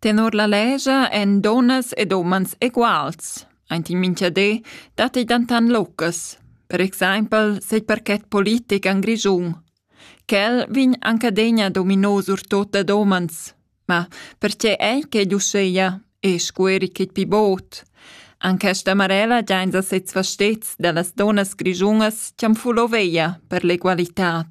Tenor la lescha èn dunnas ed umans eguals. Aint in mincha di datti dentant locas. Per exaimpel set parket politic en Grischun. Quel vegn anc adegna dominò surtut dad umans. Ma pertge ei quei uschea e scueri quei pi bod? An questa marella giains a sezs fastets da las dunnas grischunas chi'am fulo veia per l'egualitad.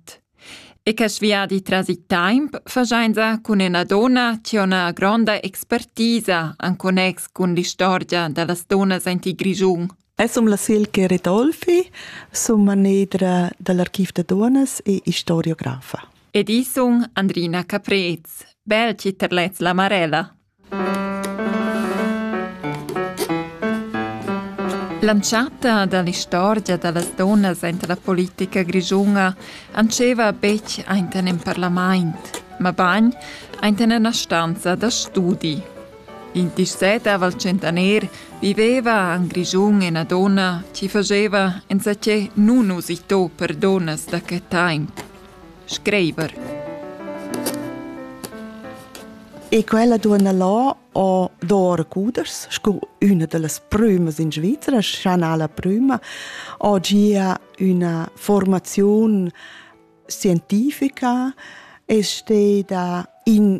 E che sviadi tras il temp faschainsa cun üna donna chi ho üna gronda expertisa in connex cun l'istorgia da las dunnas aint il Grischun. Ais sum la Silke Redolfi, sum manedra da l'Archiv da Duonnas e istoriografa. Ed i sun Andrina Caprez, bel chi terlets la marella. L'entschatta dall'istorgia dallas dunnas aint la politica grischuna antscheva betg ainten in parlamaint, mabagn ainten ena stanza da studi. Il 17 al centenair viveva en Grischun ena donna chi fageva enzatgé nunusitò per donnas da que taimp. Schreiber. E quella duonna là ho d'or cuders scu üna da las prümas in Svizra, Chanala prüma, ho gia üna formaziun scientifica e steda in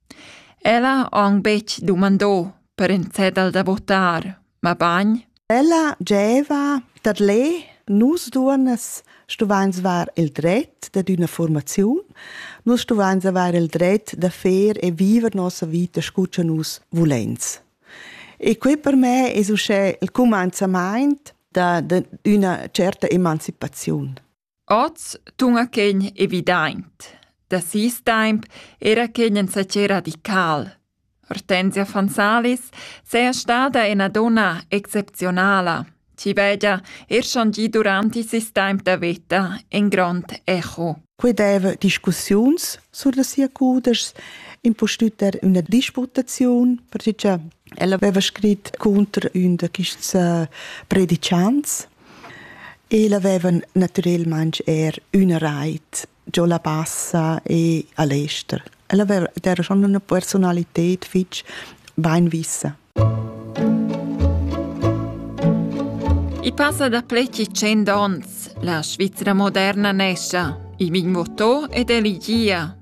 Ella ha aunc betg dumandò per in cedel da votar, mabain Ella gieva dad lè, nus duonnas stuvains var il dret dad üna fuormaziun, nus stuvains avair il dret da fer e viver nossa vita scu cha nus vuleins. E quai per me es uschè il cumanzamaint da d'üna tscherta emancipaziun. Oz tuna quegn evidaint. Da sis taimp era quegn insatge radical. Hortensia van Salis seja stada ena donna exceptionala, chi vegia er changi duranti sis taimp da veta en grond echo. Quei deva discussiuns sur da sia cudeschs, impustüt er üna disputaziun, perche che ella aveva scrit cunter ün da quists uh, predicants El havevan naturalmein er üna reit giò la Bassa e a l'ester. El haveva era schon üna personalited fich beinvissa. I passa da pleci cent ons. La Svizzera moderna nescia. I vin votò ed eligia.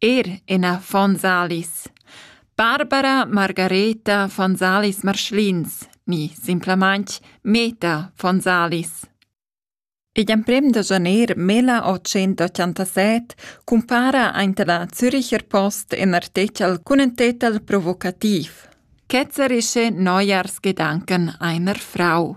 Er ina von Salis. Barbara Margareta von Salis Marschlins ni simplamaintg Meta von Salis. Igl emprem da janer 1887 cumpara aint la Züricher Post in artechel cun ün tetel provocativ. Ketzerische Neujahrsgedanken einer Frau.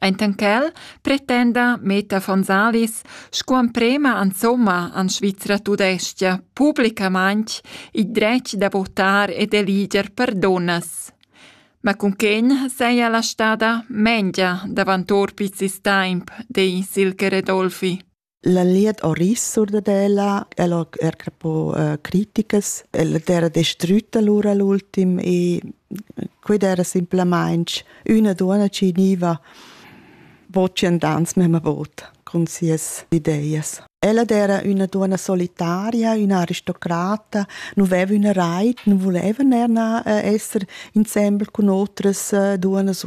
Enten quel pretenda Meta von Salis sco emprema insomma an Svizra tudestga publicamaintg il dretg da votar e d'eliger perdunas. Ma cunquegn seia la stada mengia davant or piz il taimp, dei Silke Redolfi. La liet ho ris sur dad ella, el ho er crepo uh, critiches, el d'era destrütta lura l'ultim e quid era simplamaing üna duonna chi gniva vocendans memma vot cun sias ideias. Ella era üna duonna solitaria, üna aristocrata, non veva üna rait, non voleva er na, uh, esser insembel cun otras uh, duonnas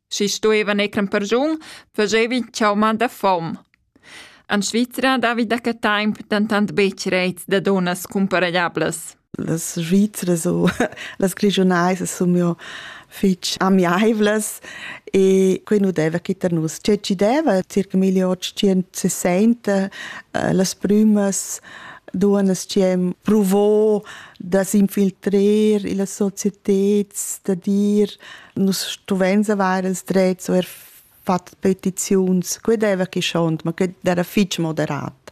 Schi stuevan ecran pergiun, fagevi chauma da fom. En Svizra davi da que temp dentant betg reits da dunnas cumparegliablas. Las Svizras u las Grigiunais sun jo fich amiaivlas e quei nu deva chi tar nus. Tge ci deva circa 1860 eh, las prümas duonas chi hem provo da s'infiltrer illa societed da dir Nus stuvains avair ils drets o er fat petiziuns, que deva chi schont, ma que era fich moderat.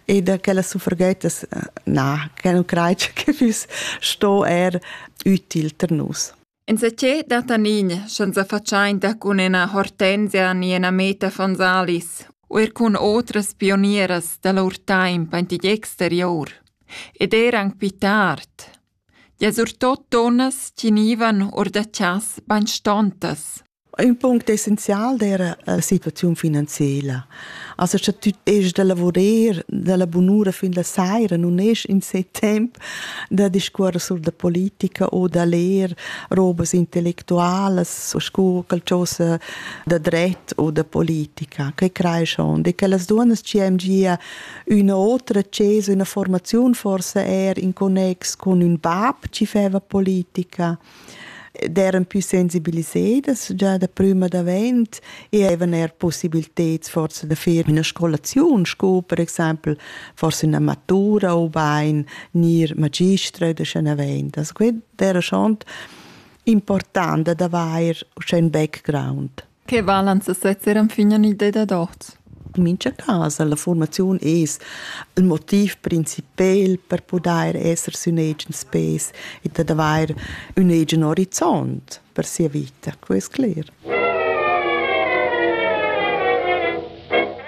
E da quella suffragettas, na, que nu crai che füss sto er ütil per nus. Insachet da Tanin, senza faciainta cun ena hortenzia ni ena meta Fonsalis, o er cun otras pionieras da lur taimp antigli exterior, ed er anc pi tard, Ja surtot dunnas tginivan or da chas bainstontas. Ün punct essenzial d'eira la situaziun finanziela. Also scha tü est da lavurer dalla bunura fin la saira nun est in se temp da discuorrer sur da politica o da ler robas intellectualas o scu qualchosa da dret o da politica. Que creeschond e quellas duonnas chi am gia Üna otra access, üna formaziun forse er in connex con ün bab chi feva politica d'eran pü sensibilisedas già da prüma davent e havevan er possibiliteds forse da fer üna scolaziun sco per exaimpel forse üna matura ubain gnir magistra da scha naventas. Quai d'era schont important ad avair uschè ün background. Che valan sesezzer enfin in idea dad oz? In mincha cas la fuormaziun es il motiv principel per pudair esser sün agens pes e dad avair ün agen orizont per sia vita, que es cler.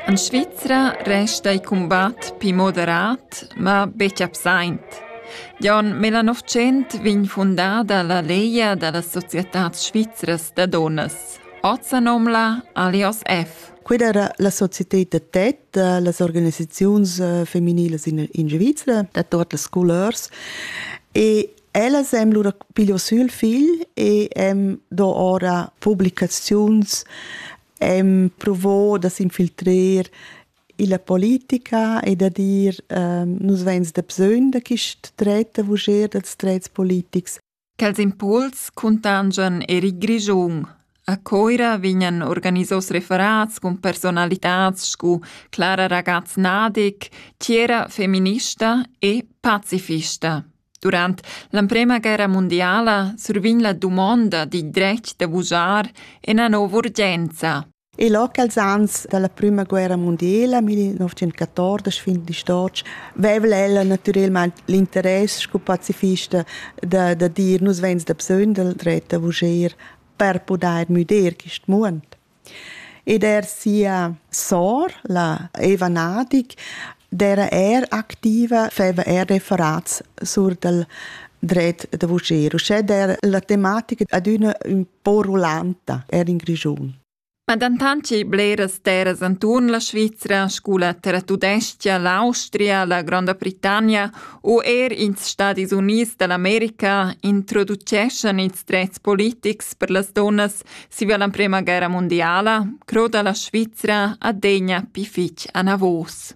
En Svizra resta il cumbat pli moderat, ma betg absaint. Gion Melanovichent vegn fundada la Legia da las societads svizras da dunnas. Oz sa nomna Alios F. Quella era la societad da tet da las organisaziuns eh, feminilas in, in Svizra, da tot las scolars. E ellas hem lura piglio sül figl e hem do ora publicaziuns Ehm provo da s'infiltrer illa politica e da dir nus vains dabsögn da quist dret da vujer dals drets politics. Quels impuls cuntangian er il Grischun. A Coira vegnan organisos referats cun personalitats scu Clara Ragaz-Nadig, Tiera feminista e pacifista. Durant l'emprema guerra mundiala survegn la dumonda dil dretg da vujar ina nova urgenza. E locals ans dalla prima guerra mondiala 1914 fin di stotg vevla ella naturalmente l'interess sco pazifista da, da dir nus vens da bsöndel dret da vuger per podair müder quist muond. Ed er sia sor, la Eva Nadig, d'era er activa, feva er referats sur dal dret da vuschir. Uschè d'era la tematica adüna ün po rulanta, er in Grischun. Ma dentant che bleras terras anturn la Svizra, scu la Terra Tudestia, l'Austria, la Gronda Britannia u er ins Stadis Units da l'America introduceschan ils drets politics per las donnas Siva la prema guerra mundiala croda la Svizra adegna pi fitg anavos.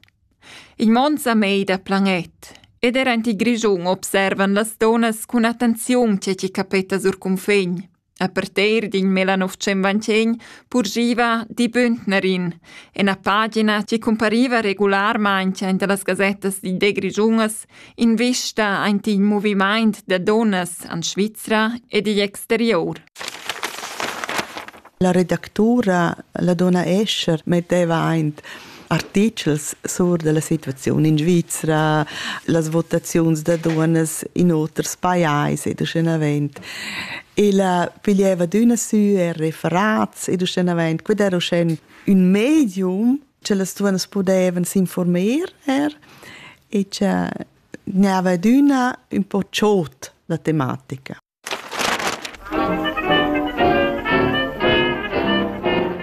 Il mond sa mei da planet ed era in Grischun observan las donas cun attenziun ce ci capeta sur cunfegn. A parter din Melanovcemvancegn purgiva di Bündnerin, en a pagina ci compariva regularmain in de las gazettas di de Grigiunas Invista aint il movimaint da dunnas en Svizra ed igl exterior. La redactura, la donna Escher, metteva aint artichels sur della situaziun in Svizra, las votaziuns da dunas in oters pajais ed uschenavent. Ella piglieva d'üna sü e referats ed uschenavent, quid era uschen ün medium che las duas pudevan s'informar er e che n'aveva adüna un po chot la tematica.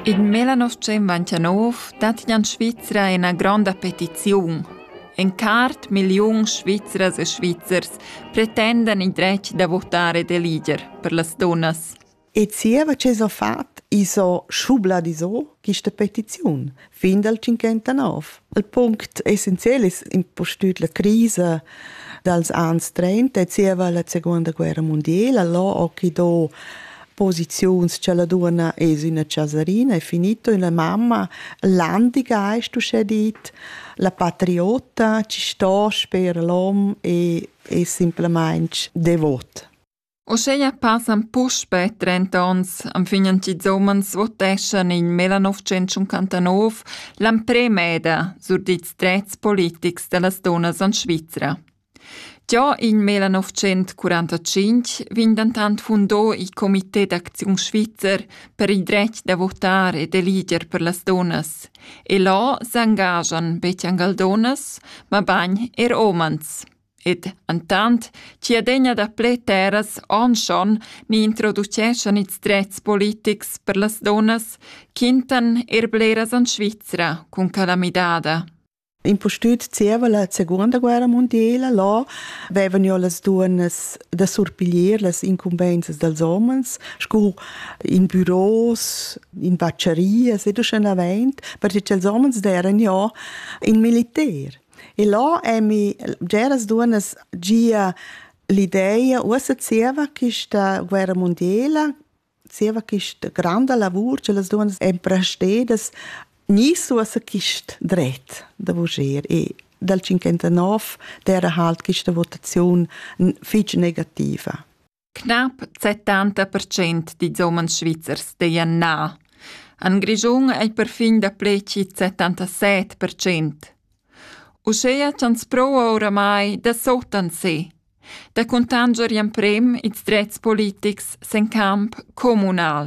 In Melanoschem Vantianov dat in Svizra ina gronda petiziun. En cart million Svizras e Svizzers pretendan il dretg da votare de liger per las donnas. E zieva che s'ho fat, i's ho schubladisò quista petiziun fin dal 59. Il punct essenziel es impustüt la crisa dals ans 30 e zieva la seguonda guerra mundiela, là ho chi do posiziuns cha la duonna es üna chasarina, è finito, üna mamma, landigeist uschè dit, la patriota chi sto sper l'hom e es simplamaing devot. Uscheia passan puspe trenta ons anfignen ch'ils umans voteschan in millenovecentschuncantanov l'amprema eda sur dils drets politics dallas dunnas en Svizra. Già in millenovecentschurantacinq vegn dentant fundò il Comité d'acziun svizzer per il dretg da votar e d'eliger per las dunnas e là s'engaschan betg angal dunnas, mabain er umans. Ed entant chi adegna daplè terras onschon ni introduceschan ils drets politics per las dunnas, quintan eir bleras en Svizra cun quella midada. Impustüt zieva la seguonda guerra mundiela là vevan jo las duonnas da surpiglier las incumbenzas dals homens scu in büros, in baccherias ed uschenavant, perche cha'ls homens deran jo in militer. E là emi bgeras duonnas gia l'ideia, uossa zieva quista guerra mundiela, zieva quista granda lavur cha las duonnas èn prestedas, gnüss uossa quist dret da vuger e dal tschinquantanov d'eira halt quista votaziun fich negativa. Knapp 70% dils umens svizzers deien na. En Grischun ei perfin dapleci 77%. Uschea ch'ans pro oramai da sotan se, da cuntanger emprem ils drets politics sen camp communal.